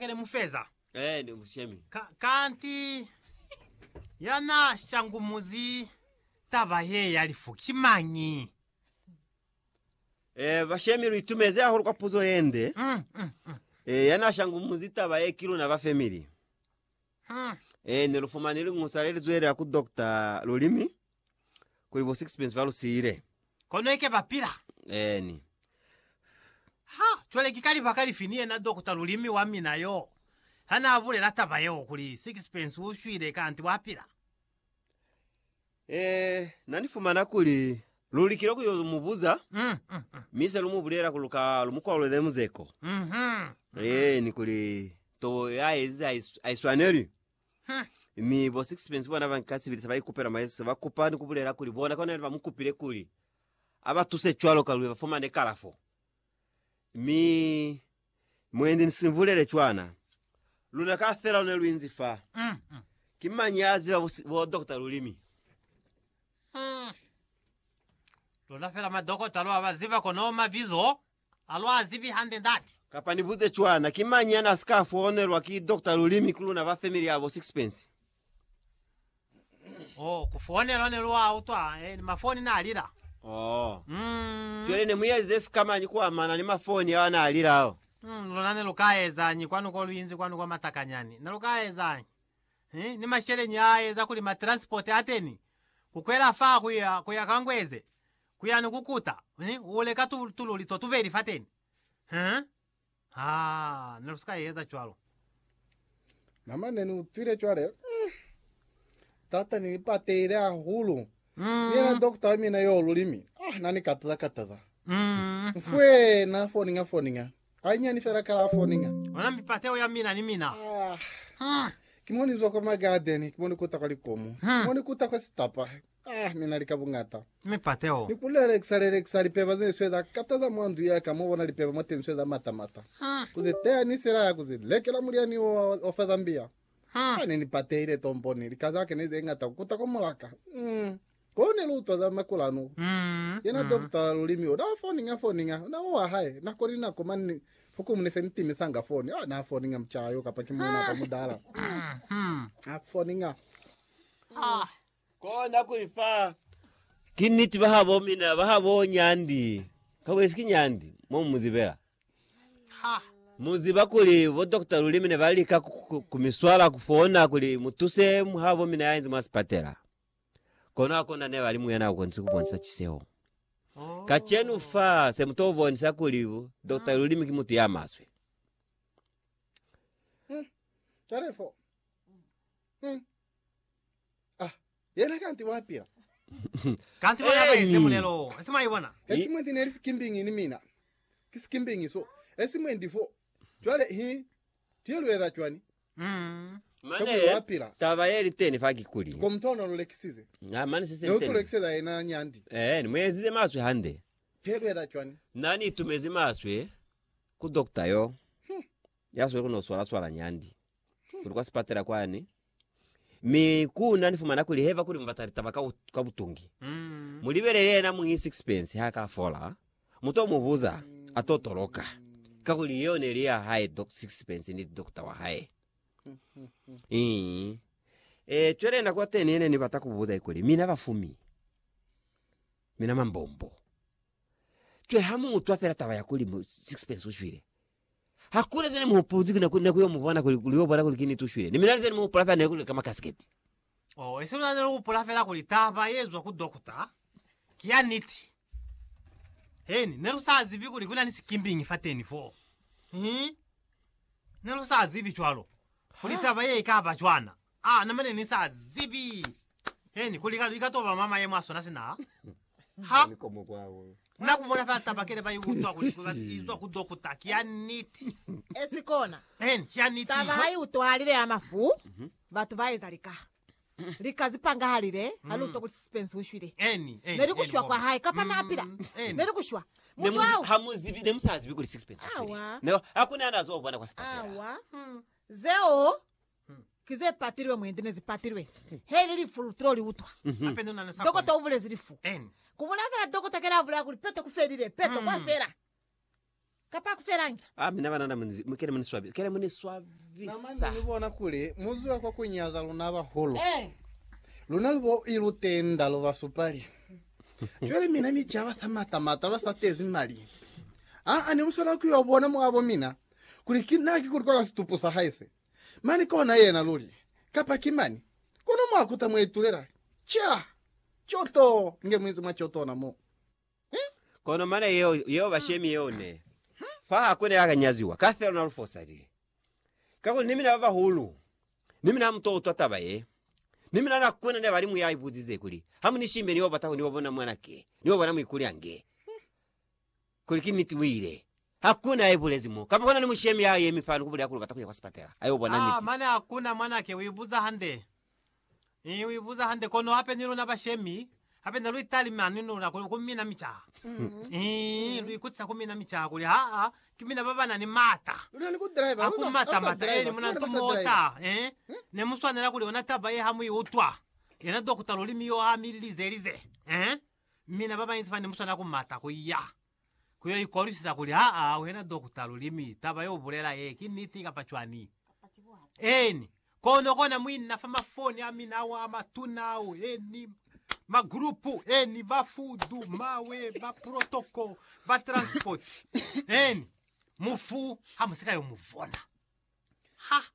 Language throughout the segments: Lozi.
Kele mu feza. Eh, ne mu shemi. Ka, kanti ya na shangumuzi taba ye ya lifu ki mañi? Eh, ba shemi lu itumeze hahulu kwa puzo ye nde. Mm, mm, mm, Eh, ya na shangumuzi taba ye ki luna ba family. mm. Eh, ne lu fumani lingusa le li zwelela ku doctor Lulimi. kuli bo sixpence ba lu siile. Kono ike ba pila. Eeni. Ha, cwale ki ka libaka lifi ni yena Dokota Lulimi wa mina yo, ha na bulela taba yeo kuli sixpence u shwile kanti wa pila? Eh, na ni fumana kuli lu likile ku yo mu buza, Mm, mm, mm. mi se lu mu bulela kuli lu ka lu mu kwalulele muzeko. Mhm. Eeni, kuli tobo ya ezize ha i s- ha i swaneli. Mi bo Sixpence bona banka sibili sebaikupela mwa Yesu, sebakupa ni kubulela kuli bona kona yena bamukupile kuli abatuse cwaloka luli bafumane kalafo. Mi mwendi nisibulele cwana, luna kafela lune luinzi fa, ki mañi yaziba bo, bo dokota lulimi? Luna fela madokota lwa baziba kono mabizo A lu a zibi hande ndate. Kapa ni buze cwana, ki mañi yana si ka foonelwa ki Doctor Lulimi ku luna ba family ya bo Sixpence? Oh, ku foonelwa ne lu a utwa, eh, ni mafoni na lila. Oh. Mm. Cwale ne mu ezize si ka mañi ku amana ni mafoni ao ana lila ao? Mm, luna ne lu ka ezañi kwanu ko lu inzi kwanu kwa Matakanyani? Ne lu ka ezañi? Eh, ni masheleñi a eza kuli ma transport ateni, ku kwela fa ku ya, ku ya ka Ngweze, Ku ya ni ku kuta, mi u leka tu, tululi to tubeli fateni. Huh? Ha, ne lu si ka eza cwalo. Na mwa ne ni utwile cwale, mm, tata ni lipatehile hahulu. Ni yena Mm, dokta wa mina yo lulimi, ah, na ni kataza kataza. mm, Mfwe, na foninga foninga. Hanyani fela kala a foninga. ona mipateho ya mina ni mina. Ah, Mm, ki mo ni zwa kwa magadeni, ki mo ni kuta kwa likomo, Hmm. ki mo ni kuta kwa sitapa, Ah, ni na li ka buñata. Mi pate o. Ni ku lelekisa, lelekisa lipeba ze ni sweza kata za mwa ndu ya ka, mo bona lipeba mwateni sweza mata, mata. Ah. Ku ze teha ni sila ya ku ze lekela mulyani wo wa, wa fa Zambia. Ah. Ah, ne ni patehile tomponi, lika za ka ne ze ñata ku kuta kwa mulaka. Mm. Ko ne lu utwa za makulanu. Mm. Yena mm. dokta wa lulimi o, na foniña, foniña, na wa wa hae, nako ni nako, mani ni, fukumu ne se ni timisanga foni. Ah, na foniña mucaa yo, kapa ki muuna apa mudala. Mm. Ah, foniña. Ah. Kona kuli fa ki niti bahabo mina bahabo nyandi kakunyisi ki nyandi mo mu zibela ha mu ziba kuli bo Doctor Lulimi ne ba lika ku mi swala ku fona kuli mu tuse habo mina ya inzi mwa sipatela kono ha kona ne ba li muyana ukonisi ku bonisa ciseo oh. kacenu fa se mu to bonisa kuli Doctor Lulimi ki mutu ya maswe hmm. hmm. Ah, yena kanti wapila. Kanti bona Eni. baenze mulelo wo. Esimaibona. Esimwe ndi neli sikimbingi ni mina. Ki sikimbingi so. Esimwe ndi fo. Cwale hi tuye lueza cwani? Mm. Mane Kabuli wapila. taba ye liteni fa kikuli Ko mutona lulekisize. na mane se se Ne liteni utulekiseza yena nyandi. eh ni muezize maswe hande Tuye lueza cwani? na ni itumezi maswe ku doctor yo ya swele kuno swala swala nyandi kuli kwa sipatela kwani mi kuna ni fumana kuli heva kuli mubata litaba ka, ka butungi mm. mulibelele yena mungi sixpence ha ka fola muto mubuza ato toloka ka kuli yeo ne li ya hae doc, sixpence ni doctor wa hae mm. e cwele nako teni yene ni bata kubuza ikuli mina bafumi mina mambombo cwele ha mutwa fela taba ya kuli sixpence ushwile Hakuna zani muhupuzi kina kuli naku yo mubona kuli kuli yo bona kuli kini tushwile. Ni mina zani muhupula fela naku leka makasiketi. Oh, isi mina nelu hupula fela kuli taba ye zwa ku dokota ki ya niti. Heni, nelu sa zibi kuli kuna ni sikimbingi fateni fo. Hi. Nelu sa zibi cwalo kuli taba ye ikaba cwana. Aa, na mane ni sa zibi Heni kuli ka, ka toba mwa mayemo a sona sina ha na ku bona fela taba kele ba i utwa kuli ba i utwa ku dokota. Ki ya niti. Esi kona. Heni, ki ya niti. Taba ha i utwahalile ya mafu, mhm. batu ba eza lika. Lika zi pangahalile ha lu utwa mm. kuli Sisipence u shwile. Heni, heni. Ne li ku shwa kwa hae, kapa na pila. Mm, heni. Ne li ku shwa. Mutu au. Ha mu zibi, ne mu sa zibi kuli Sisipence u shwile. Awa. Ne, ha ku ne a na zo bona kwa sipatela. Awa. Hmm. Zeo. Ki ze patilwe mwendi ne zi patilwe. He ili lifu lu tilo li utwa. Dokota u bulezi lifu. Ku bulaya fela dokota kena a bulaya kuli peto ku felile, peto kwa fela. Kapa a ku felangi. Ah mina banana kena mu ni swabisa, kena mu ni swabisa. Na mane ni bona kuli mu zuha kwa ku nyaza luna bahulu. Luna lu bo i lu tenda, lu ba supali. Cwale mina ni ca ba sa mata mata, ba sa tezi mali. Aa, ne mu swanela ku yo bona mwabo mina kuli ki na ki kuli kwa ka situpu sa hae se. Mani kona yena luli, kapa ki mani, kono mwa kuta mwa itulela, ca, co to nge muinzi mwa co tona mo. He? Kono mana yeo, yeo ba shemi yeo ne, fa ha kune ya ka nyaziwa, ka fela na lu fosalile. Kakuli ni mina ba bahulu, ni mina ha mu to utwa taba ye, ni mina na kune ne ba li mu ya ibuzize kuli, Ha mu ni shimbe, ni yo bata ku ni yo bona mwana ke, ni yo bona muikuli ange. Kuli ki niti uile. Hakuna ya ibulezi mo. Kamba kona ni mushemi ya yemi fani kubuli ya kuli ubata kuya kwa sipatela. Ayo bona Aa, niti. mane hakuna mwanake uibuza hande. Ii, uibuza hande. Kono hape ni luna bashemi, hape ne luitalime ani ni luna kuli ku mina micaha. Ii, luikutisa ku mina micaha kuli haa, ki mina baba nani mata. Luna ni ku driver. Ha ku mata mata. Ee, ni muna ntu mota. Ee, ne muswanela kuli yona taba ye ha mu i utwa. Yena dokota lulimi yo ha mi lize lize. Ee. Mi na babanzi bane muswana ku mata ku ya ku yo ikolwisisa kuli, Haa, wena dokota, lulimi, taba ye u bulela ye ki niti kapa cwani? Eeni. Kono, kona mwi na fa mafoni a mina ao a matuna ao, eeni, magrupu, eeni, ba fudu, mawe, ba protoko, ba transpoti, eeni, mufu ha mu si ka yo mu vona. Ha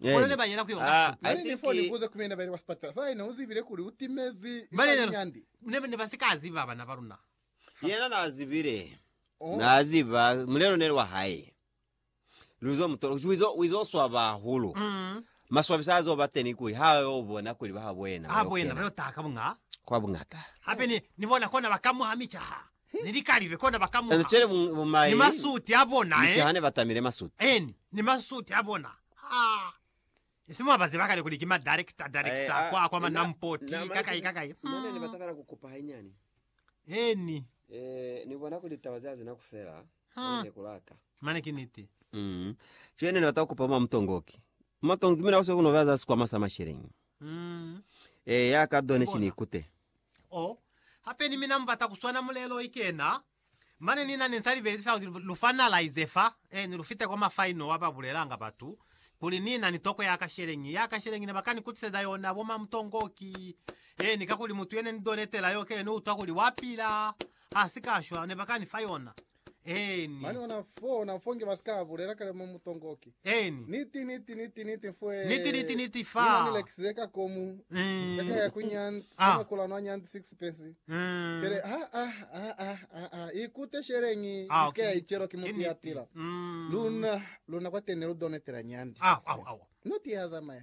Amen. Na ni nifo ni buza kumina baile kwa sipatala fa haina uzibile kuli utimezi ifali nyandi. Yena nazibile, naziba mulelo neli wa hae. Luzo mutola kuchi wizo wizo swaba hahulu. Maswabisa azo bateni kuli ha yo bona kuli ba habo yena. Kwa bungata. ni likalibe kona ba kamuha ni masuti a bona en ni masuti a bona ha isi mwa ba ziba kale kuli ki ma director director kwa kwa ma nampoti kakai kakai mm en Eh ni bona kuli taba zia zina kufela mm. ne kulaka mane ki niti mm. Chene ni bata kupa ma mtongoki matongi mina ose kuno baza sikwama sa mashelengi Eya, ka done ki ni kute. Oh, hape ni mina mubata kuswana mulelo ikena. Mane nina ne nsa libelesisa kuli lu finalize fa, eh, ni lu fite kwa ma final wa ba bulelanga batu kuli ni na ni toko ya ka sheleñi, ya ka sheleñi ne ba ka ni kutiseza yona bo mamutongoki, eh, ni kakuli mutu yene ni donetela yo kene ni utwa kuli wa pila, ha si ka shwa, ne ba ka ni fa yona. Eni. Mani ona fo, ona fo nge basika bulela kale mo mutongoki. Eni. Niti, niti, niti, niti fwe. Niti, niti, niti fa. Nina ni lekisize ka komu. Mm. Kaka ya kunyan, ah. kama kula nwa nyan six pence. Mm. Kere, ha, ha, ha, ha, ha, ha. Ikute sherengi, ah, iske okay. ya ichero ki mutu ya pila. Mm. Luna, luna kwa tene lu donetela nyandi. Ah, ah, ah. Noti ya zamaya.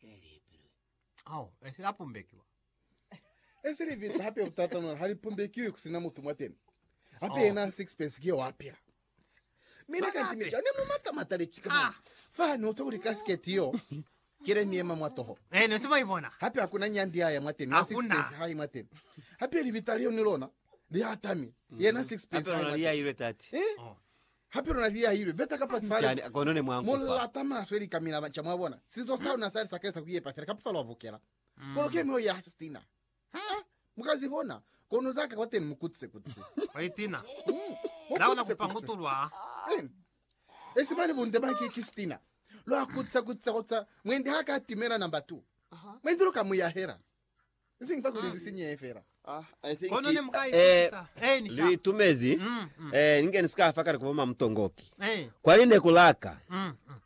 Elipilwe kao esi la pumbekiwa. Esi liviza hape butata nona hali pumbekiwi kusina mutu mwateni. Hape yena oh. sixpence kiyo wapila. Mina kanti mija ne mumata mataletwi ka ah. fa no to uli casket yo. Kile miema mwatoho. Eh no sibo ibona. Hape hakuna nyandi ya ya mwateni. Na sixpence hai mwateni. Hape libita liyo ni lona. Lihatami. Mm. Yena sixpence hai mwateni. Hape lona liya ile tati. Eh? Oh. Hape luna liahilwe beta ka patu fa lena. Kono ne mwa mu lata maswe lika mi laba nca, mwa bona. Sinzo sa luna sa li sakelisa ku yepa fela kapa fa lwa vukela. Kono ke myoyo ya Stina. Ha mu ka zi bona, kono za ka kwateni mu kutse kutse. Mwa itina. Mu Na ona kutse kupa kutse. mutulwa. Eena. Esi mane bunde ba ki, ki Stina. Lwa kutse kutse kutse. Mwendi ha ka timela number two. Mwendi lu ka mu yahela. Kono ne mu ka ikutisa. Eh, ni sa. Litumezi eh ninge ni sika fa kale kuba mamutongoki Eh. kwani ne ku laka Mm. mm.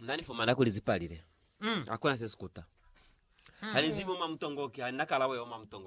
na ni fumana kuli zipalile Mm. hakuna se sikuta hanizibi uma mutongoki hanilakalabo ya uma mutongoki